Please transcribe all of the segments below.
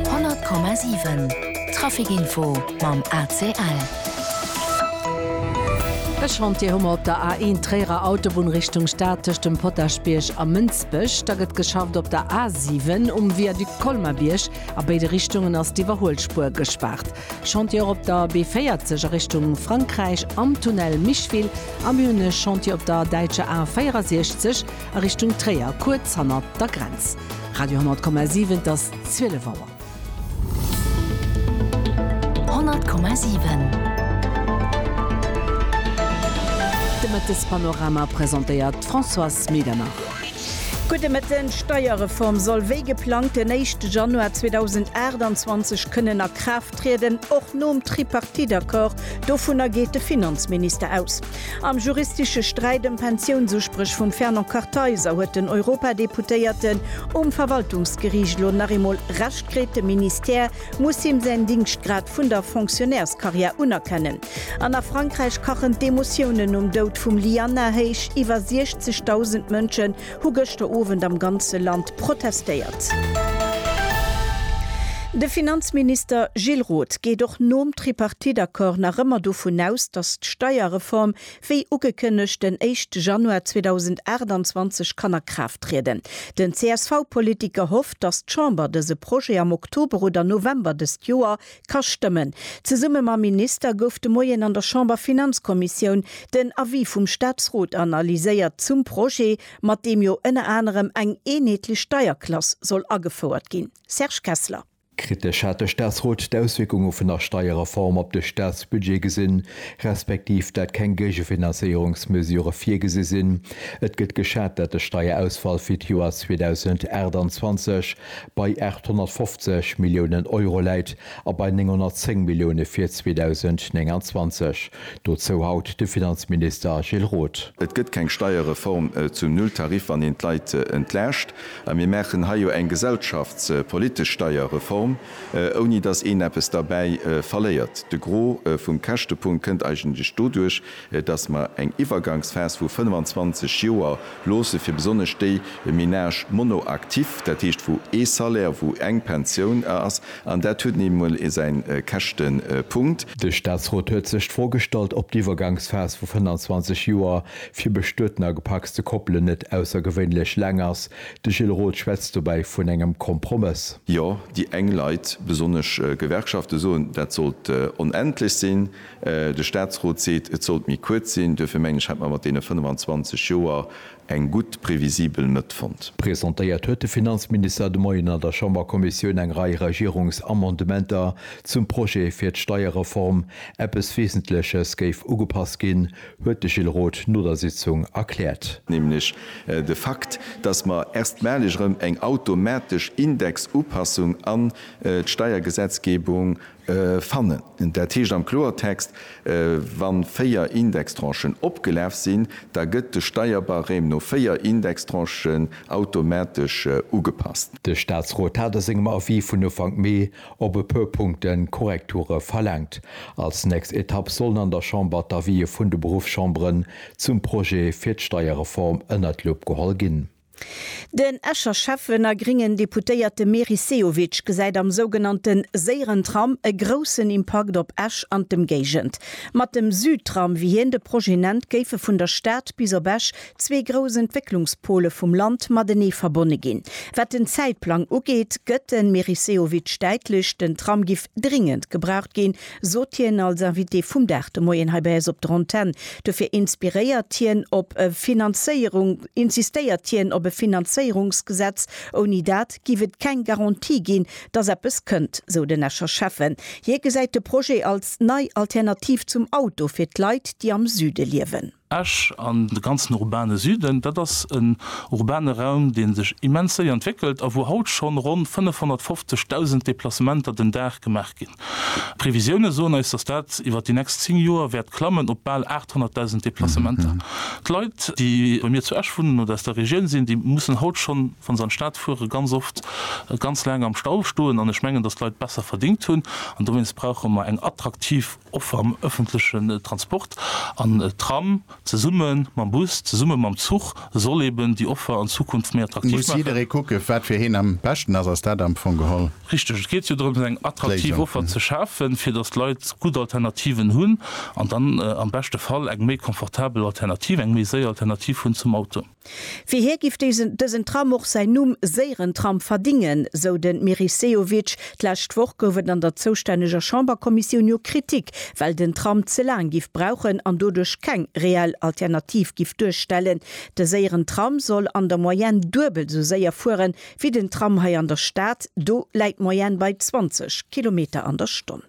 100,7 Traficinfo mam ACL. E Chantier hu mer op der A1 Tréierer Autobunn Richtung Stad tëscht dem Potaschbierg a Mënsbech. Da gëtt geschafft op der A7 um Viaduc Colmar-Bierg. A béide Richtungen ass d'Iwwerhuelspuer gespaart. Chantier och op der B40 a Richtung Frankräich am Tunnel Micheville. A mir hunn e Chantier op der däitscher A64. a Richtung Tréier, kuerz hanner der Grenz. Radio 10,7, et ass 12 Auer. 10,7 De Mëttespanorama presentéiert d'Françoise Medernach. Gudde Mëtten, D'Steierreform soll wéi geplangt den éischte Januar 2028 kënnen a Kraaft trieden, och nom Tripartite-Accord, dovunner geet de Finanzminister aus. Am juristesche Sträit ëm Pensiounsuspréch vum Fernand Kartheiser huet den Europadeputéierten um Verwaltungsgeriicht elo nach eemol Recht kritt. De Ministère muss him säin Dingschtgrad vun der Fonctionnairscarrière unerkennen. An a Frankräich kachen d'Emotiounen nom Doud vum Ly Anna héich. Iwwer 60.000 Mënsche hu gëschter Owend am ganze Land protestéiert. De Finanzminister Gilles Roth geet och nom Tripartite-Accord nach ëmmer dovun aus, datt d'Steierreform wéi ugekënnegt den éischte Januar 2028 kann a Kraaft trieden. Den CSV-Politiker hofft, datt d'Chamber dëse Projet am Oktober oder November dëst Joer Ka stëmmen. Zesumme mam Minister gouf de Moien an der Chamberfinanzkommissioun den Avis vum Staatsrot analyséiert zum Projet, mat deem jo ënner anerem eng eenheetlech Steierklass soll agefouert ginn. Serge Kessler. Kritesch hat de Staatsrot d'Auswierkunge vun der Steierreform op de Staatsbudget gesinn, respektiv dat keng Géigefinanzéierungsmesure virgesi sinn. Et gëtt geschat, dat de Steierausfall fir d'Joer 2028 bei 850 Milliounen Euro läit a bei 910 Millioune fir 2029. Dozou haut de Finanzminister Gilles Roth. Et gëtt keng Steierreform zum Nulltarif, wann een d'Leit entlaascht. A mir maachen hei jo eng gesellschaftspolitesch Steierreform, ouni datt een eppes derbäi verléiert. De Gros vum Käschtepunkt kënnt eigentlech doduerch, dass mer eng Iwwergangsphas vu 25 Joer loosse fir besonnesch déi Ménages monoactifs, dat heescht wou ee Salaire, wou eng Pensioun ass, an dat huet nun eemol säin Käschtepunkt. De Statsrot huet sech d'Fro gestallt, ob d'Iwwergangsphas vu 25 Joer fir bestueten a gepacste Koppelen net aussergewéinlech laang ass. De Gilles Roth schwätzt dobäi vun engem Kompromëss. Jo, déi eng Leit, besonnesch Gewerkschafte soen, dat sollt onendlech sinn. De Statsrot seet, et sollt méi kuerz sinn. Duerfir mengen ech, hätt mer mat deene 25 Joer eng gutt previsibel Mëtt fonnt. Presentéiert huet de Finanzminister de Moien an der Chamberkommissioun eng Rei Regierungsamendementer zum Projet fir d'Steierreform. Eppes Wesentleches géif ugepasst ginn, huet de Gilles Roth no der Sitzung erkläert. Nämlech de Fakt, datt mer erstmaleg erëm eng automatesch Indexupassung an d'Steiergesetzgebung Fannen. Dat heescht am Kloertext, Wa véier Indextranchen opgelaf sinn, da gëtt de Steierbarème no véier Indextranchen automatesch ugepasst. De Statsrot hat a sengem Avis vun Ufank Mee op e puer Punkte Korrekture verlaangt. Als nächst Etapp sollen an der Chamber d'Avisë vun de Beruffschamberen zum Projet fir d'Steierreform ënnert d'Lupp geholl ginn. Den Escher Schäffen a gréngen Deputéierte Meris Sehovic gesäit am sougenannte séieren Tram e groussen Impakt op Esch an d'Ëmgéigend. Mat dem Südtram, wéi hien de Projet nennt, géife vun der Stad bis op Esch zwee grouss Entwécklungspole vum Land matenee verbonne ginn. Wat den Zäitplang ugeet, gëtt de Meris Sehovic däitlech, den Tram giff dringend gebraucht ginn, Sot hien als Invité vum Dag de Moien hei bei eis op der Antenn. Dofir inspiréiert hien op e Finanzéierung, insistéiert hien op e Finanzéierungsgesetz. Ouni dat giff et keng Garantie ginn, dass eppes kënnt, sou den Escher Schäffen. Hie gesäit de Projet als nei Alternativ zum Auto fir d'Leit, déi am Süde liewen. Esch an de ganzen urbane Süden, dat ass en urbane Raum, dee sech immens séier entwéckelt a wou haut schonn ronn 550.000 Deplacementer den Dag gemaach ginn. D'Previsioune soen eis, dass dat iwwer déi nächst 10 Joer wäert klammen op bal 800.000 Deplacementer. D'Leit, déi bei mir zu Esch wunnen oder aus der Regioun sinn, déi mussen haut schonn, wa se an d'Stad fueren, ganz oft ganz laang am Stau stoen. An ech mengen, dass d'Leit besser verdéngt hunn an dowéinst brauche mer eng attraktiv och am ëffentlechen Transport, an Tram zesumme mam Bus, zesumme mam Zuch, soll eben déi Offer an Zukunft méi attraktiv maachen. Muss jidderee kucken, wat fir hien am beschten ass, ass dat am Fong geholl. Richteg, et geet jo drëms, eng attraktiv Offer ze schafen, fir datt d'Leit gutt Alternativen hunn an dann am beschte Fall eng méi confortabel Alternativ, eng méi séier Alternativ hunn zum Auto. Fir hie giff dësen Tram och säin Numm Séierentram verdingen, sou de Meris Sehovic. D'lescht Woch gouf et an der zoustänneger Chamberkommissioun jo Kritik, well den Tram ze laang giff brauchen an doduerch keng reell Alternativ giff duerstellen. De Séierentram soll an der Moyenne duebel sou séier fuere wéi den Tram hei an der Stad, do läit d'Moyenne bei 20 Kilometer an der Stonn.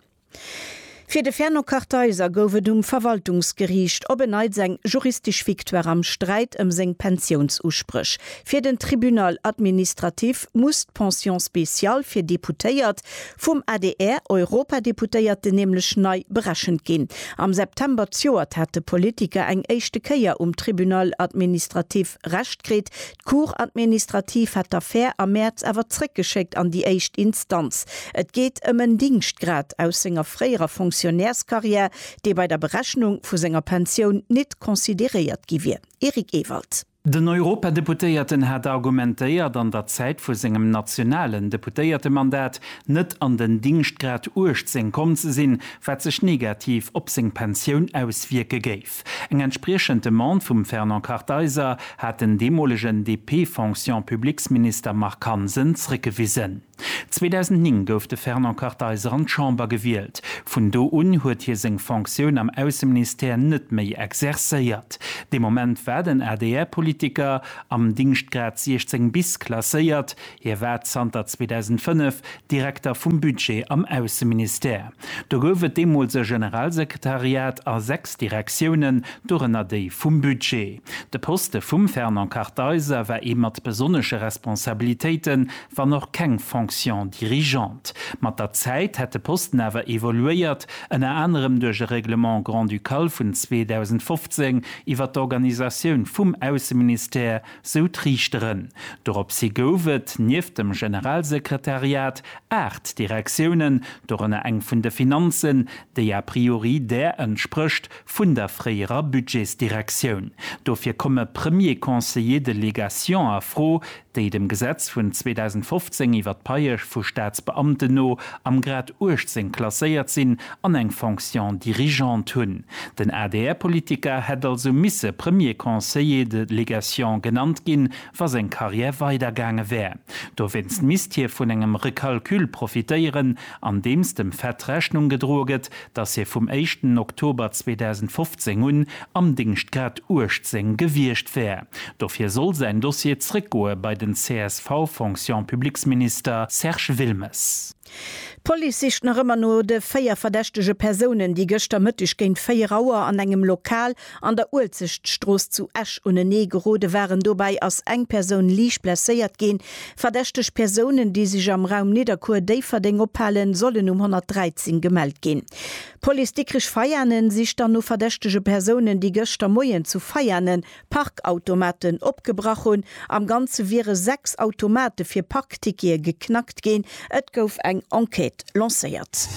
Fir de Fernand Kartheiser gouf et um Verwaltungsgeriicht op en Neits eng juristesch Victoire am Sträit ëm seng Pensiounsuspréch. Fir den Tribunal administratif muss d'Pension spéciale fir Deputéiert vum ADR-Europadeputéierten nämlech nei berechent ginn. Am September zjoert hat de Politiker eng éischte Kéier um Tribunal administratif Recht kritt, D'Cour administrative hat d'Affär am Mäerz awer zréckgeschéckt an déi éischt Instanz. Et geet ëm en Dingschtgrad aus senger fréierer Fonctionnairscarrière, dee bei der Berechnung vu senger Pensioun nit consideréiert gi wier. Eric Ewald. Den Europadeputéierten hat argumentéiert, an der Zäit vu sengem nationalen Deputéiertemandat net an den Dingschtgrad 18 komm ze sinn, wat sech negativ op seng Pensioun auswierke géif. Eng entspriechend Demande vum Fernand Kartheiser hat den deemolegen DP-Fonction-Publics-Minister Marc Hansen zréckgewisen. 2009 gouf de Fernand Kartheiser an d'Chamber gewielt. Vun do un huet hie seng Fonctioun am Ausseministère net méi exercéiert. Dee Moment war den ADR-Politiker am Dingschtgrad 16 bis klasséiert, Hie war zanter 2005 Direkter vum Budget am Ausseministère. Do gouf et deemools e Generalsekretariat a sechs Direktiounen, dorënner déi vum Budget. De Poste vum Fernand Kartheiser war ee mat besonnesche Responsabilitéiten, wann och keng Fonction dirigeante. Mat der Zäit hätt de Posten awer evoluéiert, ënner anerem duerch e Règlement grand-ducal vun 2015 iwwer d'Organisatioun vum Ausseministère, sou d'Riichteren. Doropshi gouf et, nieft dem Generalsekretariat, aacht Direktiounen, dorënner eng vun de Finanzen, déi a priori där entsprécht vun der fréierer Budgetsdirektioun. Dofir komme Premier Conseiller de légation a Fro, déi dem Gesetz vun 2015 iwwer d'Paiesch vu Staatsbeamten no am Grad 18 klasséiert sinn an eng Fonction dirigeante hunn. Den ADR-Politiker hätt also misse Premier Conseiller de Légation genannt ginn, wa seng Karriär weidergaange wär. Dowéinst misst hie vun engem Recalcul profitéieren, andeems dem Fett Rechnung gedroe gëtt, datt hie vum éischten Oktober 2015 un am Dingscht grad 18 gewiescht wär. Dofir soll säin Dossier zréckgoe bei den CSV-Fonction-publiques-Minister Serge Wilmes. D'Police sicht nach ëmmer no de véier verdächtege Persounen, déi gëschter Mëtteg géint 4 Auer an engem Lokal an der Uelzechtstrooss zu Esch unenee gerode waren. Dobäi ass eng Persoun liicht blesséiert ginn. Verdächteg Persounen, déi sech am Raum Nidderkuer-Déifferdeng ophalen, sollen um 113 gemellt ginn. D'Police Dikrech-Veianen sicht dann no verdächtege Persounen, déi gëschter Moien zu Veianen Parkautomaten opgebrach hunn. Am Ganze wiere 6 Automate fir Parktickete geknackt ginn. Et gouf eng Enquête lancéiert.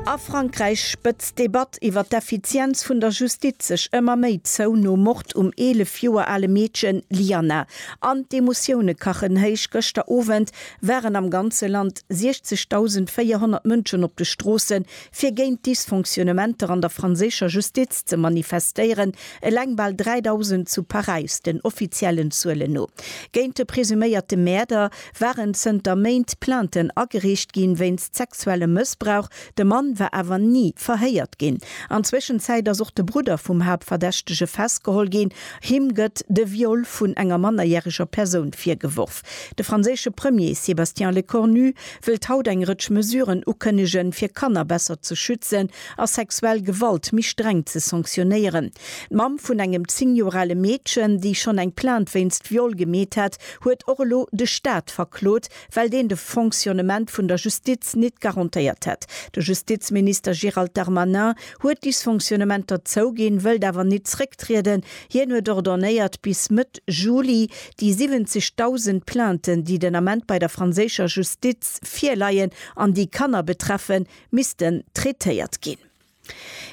A Frankräich spëtzt d'Debatt iwwer d'Effizienz vun der Justiz sech ëmmer méi zou nom Mord um 11 Joer ale Meedchen Lyana. An d'Emotioune kachen héich, gëschter Owend waren am ganze Land 60.400 Mënschen op de Stroossen fir géint d'Dysfonctionnementer an der franséischer Justiz ze manifestéieren, eleng bal 3.000 zu Paräis, den offiziellen Zuelen no. Géint de presuméierte Mäerder waren zënter Méint Plainten ageriicht ginn, wéinst sexuellem Mëssbrauch. De Mann war awer ni verhéiert ginn. An Zwëschenzäit ass och de Brudder vum Haaptverdächtege festgeholl ginn. Him gëtt de Viol vun enger mannerjäreger Persoun virgeworf. De franséische Premier Sébastien Lecornu wëllt haut eng Rëtsch Mesuren ukënnegen, fir Kanner besser ze schützen a sexuell Gewalt méi streng ze sanktionéieren. D'Mamm vun engem 10 Joer ale Meedchen, déi schonn eng Plainte wéinst Viol gemeet hat, huet och elo de Staat verklot, well deen de Fonctionnement vun der Justiz nit garantéiert hätt. De Justizminister Gérald Darmanin huet Dysfonctionnementer zouginn, wëllt awer nit zrécktrieden. Hien huet ordonnéiert, bis Mëtt Juli Déi 70.000 Plainten, déi den Ament bei der franséischer Justiz virleien an déi Kanner betreffen, missten traitéiert ginn.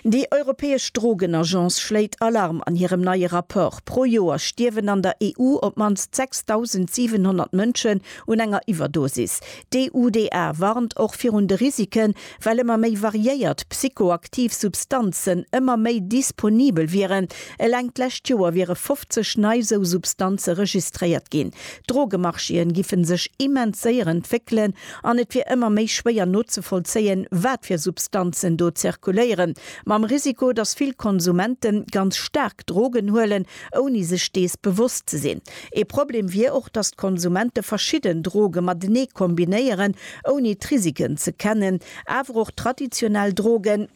Déi europäesch Drogenagence schléit Alarm an hirem neie Rapport. Pro Joer stierwen an der EU op d'mannst 6.700 Mënschen un enger Iwwerdosis. D'EUDA warnt och virun de Risiken, Well ëmmer méi variéiert psychoaktiv Substanzen ëmmer méi disponibel wieren. Eleng d'lescht Joer wiere 50 nei esou Substanze registréiert ginn. D'Drogemarchéen giffen sech immens séier entwéckelen an et wier ëmmer méi schwéier nozevollzéien, wat fir Substanzen do zirkuléieren. Mam Risiko, datt vill Konsumente ganz staark Drogen huelen ouni sech dees bewosst ze sinn. Ee Problem wier och, datt d'Konsumente verschidden Droge matenee kombinéieren, ouni d'Risiken ze kennen. Awer och traditionell Droge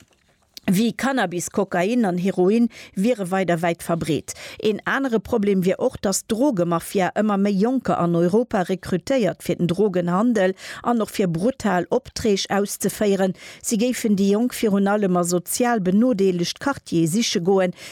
wéi Cannabis, Kokain an Heroin wiere weider wäit verbreet. Een anere Problem wier och, datt d'Drogemafia ëmmer méi Jonker an Europa rekrutéiert fir den Drogenhandel an och fir brutal Opträg auszeféieren. Si géifen déi Jonk virun allem a sozial benodeelegt Quartiere siche goen,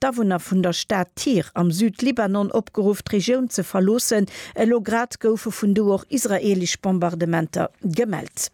D'Awunner vun der Stad Tyr am Südlibanon opgeruff, d'Regioun ze verloossen. Elo grad goufe vun do och israeelesch Bombardementer gemellt.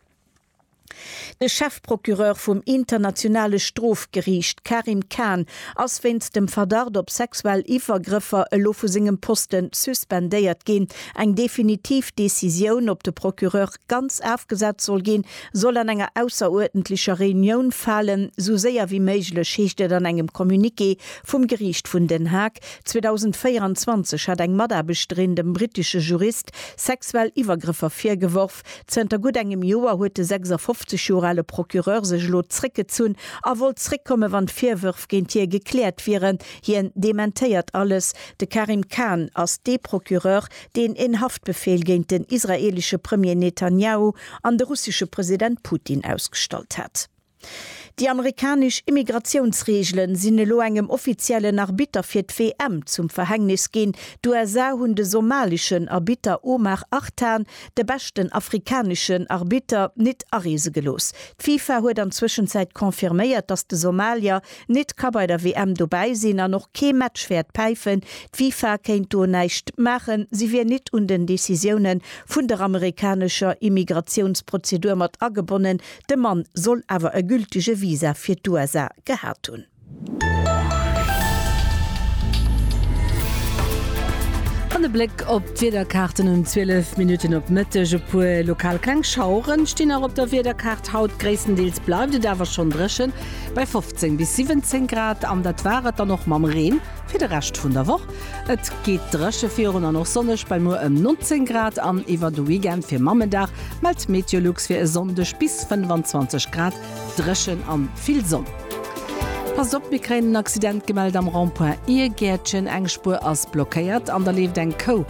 De Chefprocureur vum Internationale Strofgeriicht, Karim Khan, ass wéinst dem Verdacht op sexuell Iwwergrëffer elo vu sengem Posten suspendéiert ginn. Eng definitiv Decisioun, ob de Procureur ganz afgesat soll ginn, soll an enger ausseruerdentlecher Reunioun falen, sou séier wéi méiglech, heescht et an engem Communiqué vum Geriicht vun Den Haag. 2024 hat eng Mataarbechterin dem brittesche Jurist sexuell Iwwergrëffer virgeworf. Zënter gutt engem Joer huet de 56 Joer ale Procureur sech elo zréckgezunn a wollt zréckkommen, wann d'Virwërf géint hie gekläert wieren. Hien dementéiert alles. De Karim Khan ass dee Procureur, deen en Haftbefeel géint den israeelesche Premier Netanjahu an de russesche President Putin ausgestallt hat. Déi amerikanesch Immigratiounsreegele sinn elo engem offiziellen Arbitter fir d'WM zum Verhängnis ginn. D'USA hunn de somaleschen Arbitter Omar Artan, de beschten afrikaneschen Arbitter, nit areese gelooss. D'FIFA huet an Zwëschenzäit confirméiert, datt de Somalier Nit ka bei der WM dobäi sinn an och kee Match wäert päifen. D'FIFA kéint do näischt maachen, si wier nit un den Decisioune vun der amerikanescher Immigratiounsprozedur mat agebonnen. De Mann soll awer e gültege Visa fir d'USA gehat hunn. An e Bléck op d'Wiederkaarten um 12 Minutten op Mëtteg. E puer lokal kleng Schaueren stinn nach op der Wiederkaart haut. Gréisstendeels bleift et awer schonn dréchen. Bei 15 bis 17 Grad, an dat war et dann och mam Reen fir de Rescht vun der Woch. Et geet dréche virun an och sonneg bei muer ëm 19 Grad an iwwer de Weekend fir Mammendag mellt Meteolux fir e Sonndeg bis 25 Grad dréchen an vill Sonn. Passt op, mir kréien en Accident gemellt am Rond-point Iergäertchen, eng Spuer ass blockéiert an da leeft eng Kou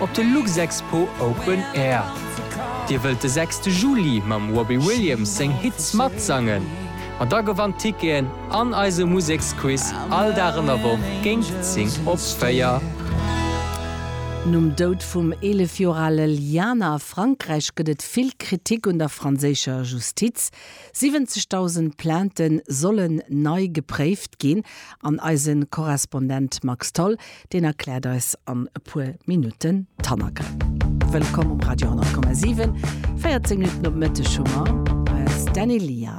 Op de Luxexpo Open Air. Dir wëllt de sechste Juli mam Robbie Williams seng Hits matsangen? Ma da gewannt Ticketen an eise Museksquiz all Dag an der Woch géint 10 op 4. Nom Doud vum 11 Joer ale Liana a Frankräich gëtt et vill Kritik un der franséischer Justiz. 70.000 Plaintë sollen nei gepréift ginn an eise Korrespondent Max Tholl Deen erkläert eis an e puer Minutten d'Hannergrënn. Wëllkomm um Radio 10,7. 14 Minutten op Mëtteg hu mer eis Dany Lia.